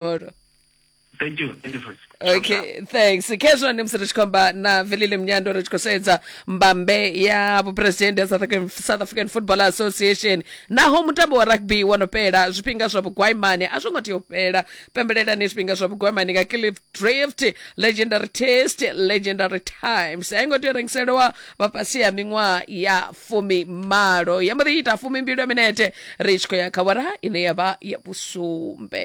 tomorrow thank you thank you for okay thanks kezvo ndi musiri chikomba na velile mnyando ri tshi khou sedza mbambe ya vhupresidennde ya south african, south african football association naho mutambo wa rugby wo no fhela zwifhinga zwa vhugwaimani a zwo ngo tea u fhela pembelelani zwifhinga zwa vhugwaimani nga cliff drift legendary test legendary times a i ngo tea u rengiselewa vha fhasi ya miṅwaha ya fumi malo ya mbo ḓi ita fumi mbili ya minete ri tshi khou ya kha wara ine ya vha ya vhusumbe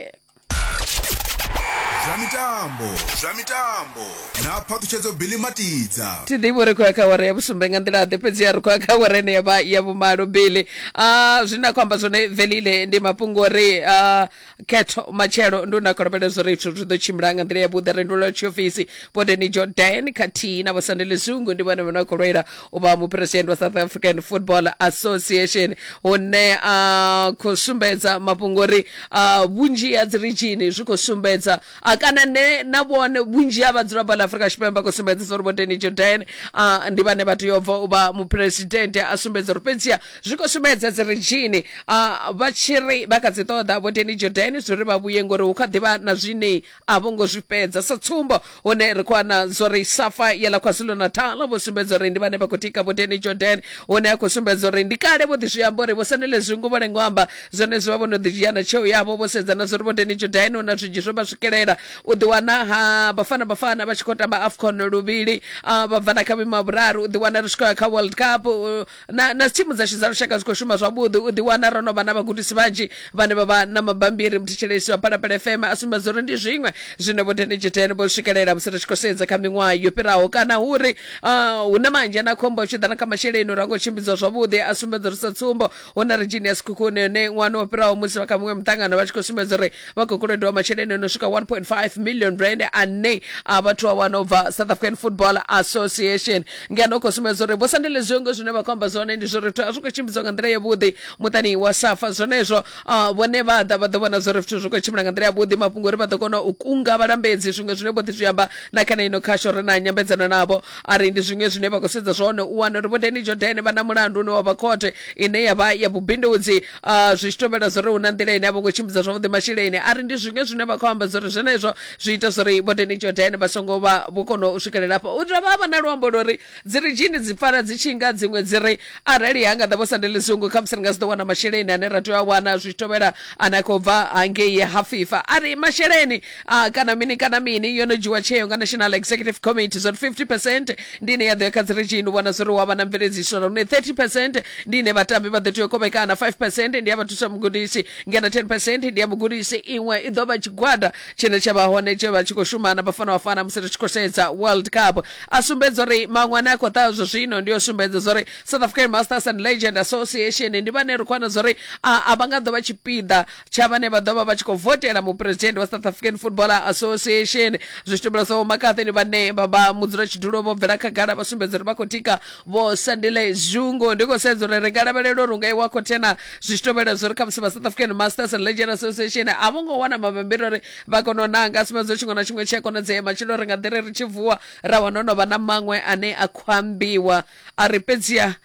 zwa mitambo zwa mitambo na phaṱhutshedzo bili matidza thi ḓivhi uri khou ya kha wara ya vhusumbe nga nḓila ḓe fhedzi ya ri khou ya kha wara ine ya vha ya vhumalo bili a zwine a khou amba zwone velile ndi mafhungo uri ah, khetho matshelo ndo nda kolobela zwo ri zwithu zwi ḓo tshimbila nga nḓila yavhuḓi re ndula tshiofisi bodeni jordan khathihi na vhosandele zungu ndi vhone vhane vha khou lwela u vha muphuresidennde wa south african football association hune a khou sumbedza mafhungo uri ah, vhunzhi ha dzi rijini zwi khou sumbedza a kana ne na vhone vhunzhi ha vhadzulapo ḽa afurika tshipembe khou sumbedzisa uri vhoteni jordan a ndi vhane vha tea u bva u vha muphuresidennde a sumbedza uri fhedziha zwi khou sumbedza dzi redzhini a vha tshi ri vha kha dzi ṱoḓa vhoteni jordan zwi ri vha vhuye ngori hu kha ḓivha na zwine a vho ngo zwi fhedza sa tsumbo hune ri khou ana zwo ri safa ya ḽa kwazulu natal vho sumbedza uri ndi vhane vha khou tika vhoteni jordan hune a khou sumbedza uri ndi kale vho ḓi zwi amba uri vho sanele zwingo vho lengo amba Zwenezwi vha vho no ḓi dzhia na tsheo yavho vho sedza na zwa uri vho Danny Jordaan hu na zwinzhi zwe vha swikelela u ḓiwana ha Bafana Bafana vha tshi khou tamba AFCON luvhili ah, vha bva na kha vhuimo ha vhuraru u ḓiwana ri tshi khou ya kha World Cup uh, na, na thimu dzashu dza lushaka dzi khou shuma zwavhuḓi u ḓiwana ro no vha na vhagudisi vhanzhi vhane vha vha na mabambiri muthetshelesi wa Phalaphala FM a sumbedza uri ndi zwiṅwe zwine vho Danny Jordaan vho swikelela musi ri tshi khou sedza kha miṅwaha yo fhiraho kana hu uri ah, hu na manzhi a na khombo a tshi ḓa na kha masheleni uri a ngo tshimbidzwa zwavhuḓi a sumbedza uri sa tsumbo hu na ri genius kukuni yone ṅwana o fhiraho musi vha kha muṅwe muṱangano vha tshi khou sumbedza uri vha khou kolodiwa masheleni o no swika 1.5 million rand ane a vhathu a wana u bva south african football association ngeno u khou sumbedza uri vho sandele zwiongo zwine vha khou amba zwone ndi zwo ri zwithu a zwi khou tshimbidzwa nga nḓila yavhuḓi muṱani wa safa zwenezwo ah, vhone vha ḓa vha ḓo vhona zwo ri zwithu zwi khou tshimbila nga nḓila yavhuḓi mafhungo uri vha ḓo kona u kunga vhalambedzi zwiṅwe zwine vho ḓi zwi amba na kana ino khasho ri na nyambedzano navho Arali ndi zwiṅwe zwine vha khou sedza zwone u wana uri vho Danny Jordan vha na mulandu une wa vha khothe ine ya vha ya vhubindudzi ah, zwi tshi tovhela zwo ri hu na nḓila ine a vho ngo tshimbidza zwavhuḓi masheleni a ri ndi zwiṅwe zwine vha khou amba zwo ri zwenezwo zwi ita zwo ri vho Danny Jordan vha songo vha vho kona u swikelela afho u dovha ha vha na luambo lwo ri dzi ri dzhini dzi pfala dzi tshi nga dziṅwe dzi ri arali ha nga ḓa vho sandele zungu khamusi ri nga si ḓo wana masheleni ane ra tea u a wana zwi tshi tovhela ane a khou bva hangei ha fifa a ri masheleni a kana mini kana mini yo no dzhiwa tsheo nga national executive committee zwa 50 percent ndi ine ya ḓo ya kha dzi region u vhona zwori wa vha na mveledziso lune 30 percent ndi ine vhatambi vha ḓo tea u kovhekana 5 percent ndi ya vha thusa mugudisi ngeno 10 percent ndi ya mugudisi iṅwe i ḓo vha tshigwada tshine tsha vha hone tshe vha tshi khou shumana vhafana vhafana musi ri tshi khou sedza world cup a sumbedza uri maṅwe ane a khou ḓa zwa zwino ndi yo sumbedza zwori south african masters and legend association ndi vhane ri khou wana zwori a a vha nga ḓo vha tshipiḓa tsha vhane vha ḓo vha vha tshi khou votela muphuresidennde wa south african footballer association zwi tshi tumbula sa vho makathini vhane vha vha mudzulatshidulo vho bvela khagala vha sumbedza uri vha khou tika vho sandile zungu ndi khou sedza uri ri nga lavhelela uri u nga iwa khothena zwi tshi tovhela zwo ri khamusi vha south african masters and legend association a vho ngo wana mabambiri uri vha kone u nanga a sumbedza tshiṅwe na tshiṅwe tshi a konadzea matshelo ri nga ḓi ri ri tshi vuwa ra wana ho no vha na maṅwe ane a khou ambiwa a ri fhedziha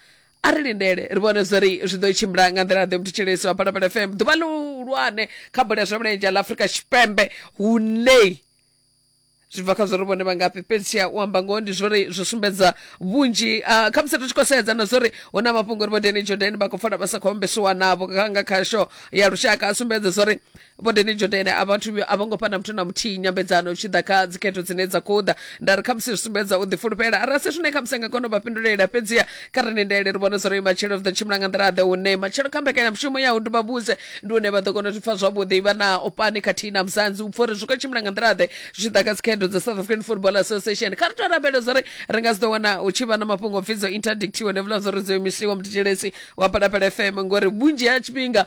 a ri lindele ri vhone zwa ri zwi ḓo tshimbila nga nḓila ḓe muthutshelesi wa phalaphala fm ḓuvha ḽihulwane kha bola ya zwa milenzhe ḽa afurika tshipembe hunei zwi bva kha zwori vhone vha ngafhi fhedzi u amba ngoho ndi zwori zwi sumbedza vhunzhi uh, kha musi ri tshi khou sedza na zwori hu na mafhungo uri vho deni jordan vha khou fola vha sa khou ombesiwa navho nga kha sho ya lushaka a sumbedza zwori vho deni jodene a vhathu a vho ngo fha na muthu na muthihi nyambedzano tshi ḓa kha dzikhetho dzine dza khou ḓa nda ri khamusi zwi sumbedza u ḓifulufhela arali se zwine khamusi a nga kona u vha fhindulela fhedziha kha ri lindele ri vhone zwa uri matshelo ri ḓo tshimbila nga nḓila ḓe hune matshelo kha mbekanyamushumo ya u nduba vhuse ndi hune vha ḓo kona u zwi pfa zwavhuḓi vha na opani khathihi na muzanzi u pfa uri zwi khou tshimbila nga nḓila ḓe zwi tshi ḓa kha dzikhetho dza south african football association kha ri tou rabele zwa uri ri nga si ḓo wana hu tshi vha na mafhungo o pfi dzo interdictiwe ndi vhula zwa uri dzo imisiwa mutetshelesi wa palapala fm ngori vhunzhi ha tshifhinga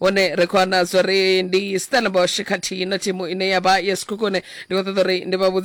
hone ri khou wana zwo ri ndi stellenbosch khathihi na thimu ine ya vha ya sekhukhune ndi khou ṱoḓa uri ndi vha vhudze